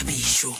boithabišo.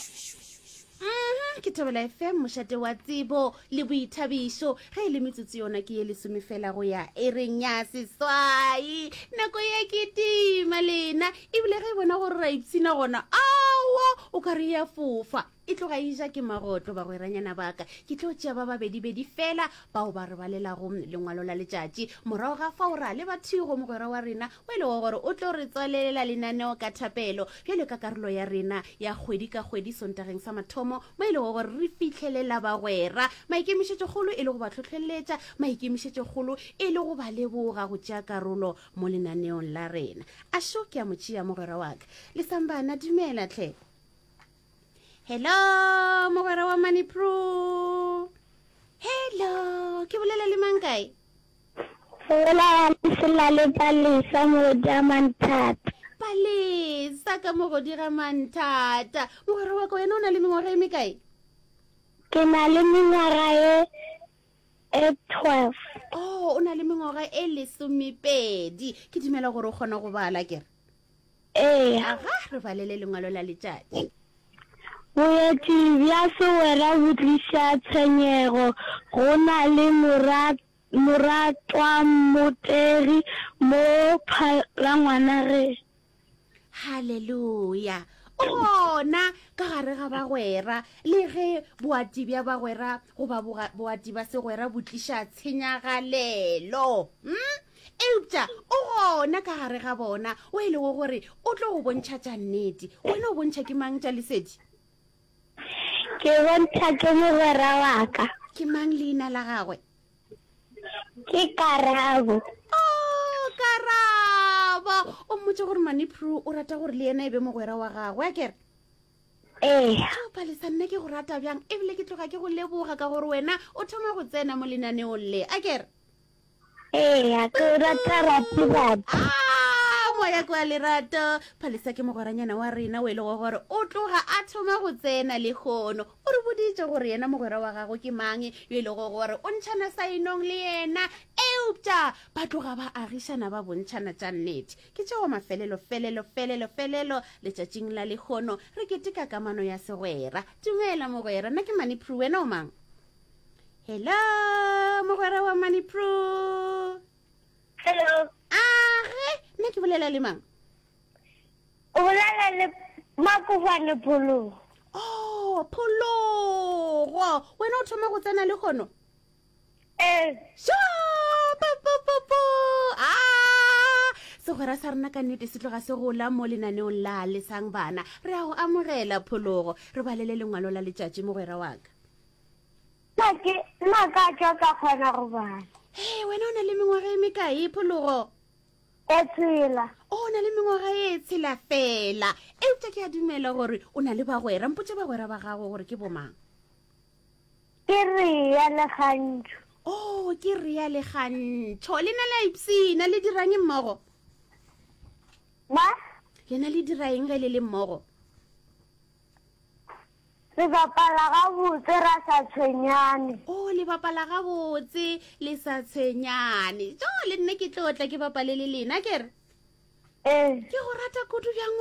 Mmh ke thobela FM mošate wa tsebo le boithabišo ge e le metsotso yona ke ye lesome fela go ya e reng ya seswai nako ye ke tima lena ebile ge e bona gore ra ipshina gona awa o ka re ya fofa e tloga e ja ke magoto bagweranyana baka ke tlo tšea ba babedibedi fela bao ba re balelago lengwalo la letšatši morago ga fao ra leba thigo mogwera wa rena o e lego gore o tlo re tswalelela lenaneo ka thapelo bjalo ka karolo ya rena ya kgwedi ka kgwedi sontageng sa mathomo mo e lego gore re fitlhelela bagwera maikemišetšokgolo e le go ba tlhotlheletša maikemišetšokgolo e le go ba leboga go tšea karolo mo lenaneong la rena a šo ke a mo tšea mogwera wa ka lesambana dumela tlhe hello mogwera wa money pro hello ke bolela le mang kae gola lesela le palesa mogodi a manthata palesa ka mogodi ga manthata mogwera wa ka wena o na le mengwaga e mekae ke na le mengwaga e e twelve o oh, o na le mengwaga e lesomepedi ke dumela gore o kgona go bala kere Ee. Aga re balele lengwalo la letšatši. Boeti bja segwera bo tliša tshenyego. Go na le moratwammotegi mo phalangwana ge. Haleluya! O gona ka gare ga bagwera. Le ge boati bja bagwera goba boati ba segwera bo tliša tshenyagalelo. Hm? Eupša o gona ka gare ga bona, o e lego gore o tlo go bontšha tša nnete. Wena o bontšha ke mang tša Lesedi? Ke bontšha ke mogwera wa ka. Ke mang leina la gagwe? Ke Karabo. Oh, Karabo! O mmotša gore Manipru o rata gore le yena e be mogwera wa gagwe, a kere? Ee. O palesa nna ke go rata bjang, ebile ke tloga ke go leboga ka gore wena o thoma go tsena mo lenaneong le, a kere? Eya, ke o rata Ratibatho. Ah, moya kwa lerato. Phalisa ke mogweranyana wa rena o e lego gore o tloga a thoma go tsena le kgono. O re boditše gore yena mogwera wa gago ke mang yo e lego gore o ntšhana saenong le yena. Eupša ba tloga ba agišana ba bontšhana tša nnete. Ke tšeo mafelelo felelo felelo felelo letšatšing la lekgono re keteka kamano ya segwera. Dumela mogwera, nna ke Maniprue, wena o mang? hello mogwera wa money pro hello age nna ke bolela le mang o bolela le makofane phologo o oh, phologo wena o thoma go tsena le kgono ee popopopo a segwera sa rena ka nnete se tloga se gola mo lenaneong la lesang bana re a go amogela phologo re balele lengwalo la letšatši mogwera wa ka Na ke na ka tšwa ka kgona go bala? Ee, wena o na le mengwaga e mekae, Phologo? E tshela. O na le mengwaga e tshela fela. Eupša ke a dumela gore o na le bagwera. Mpotše bagwera ba gago gore ke bomang. Ke Rea le Gantšho. Oh, ke Rea le Gantšho. Le na la ipsina, le dirang mmogo? Ba? Le na le diraeng ge le le mmogo? Re bapala gabotse ra sa tshwenyane. Oh, le bapala gabotse le sa tshwenyane. Jo, le nna ke tlo tla ke bapale le lena, ke re. Ee. Ke go rata kudu bjang wena.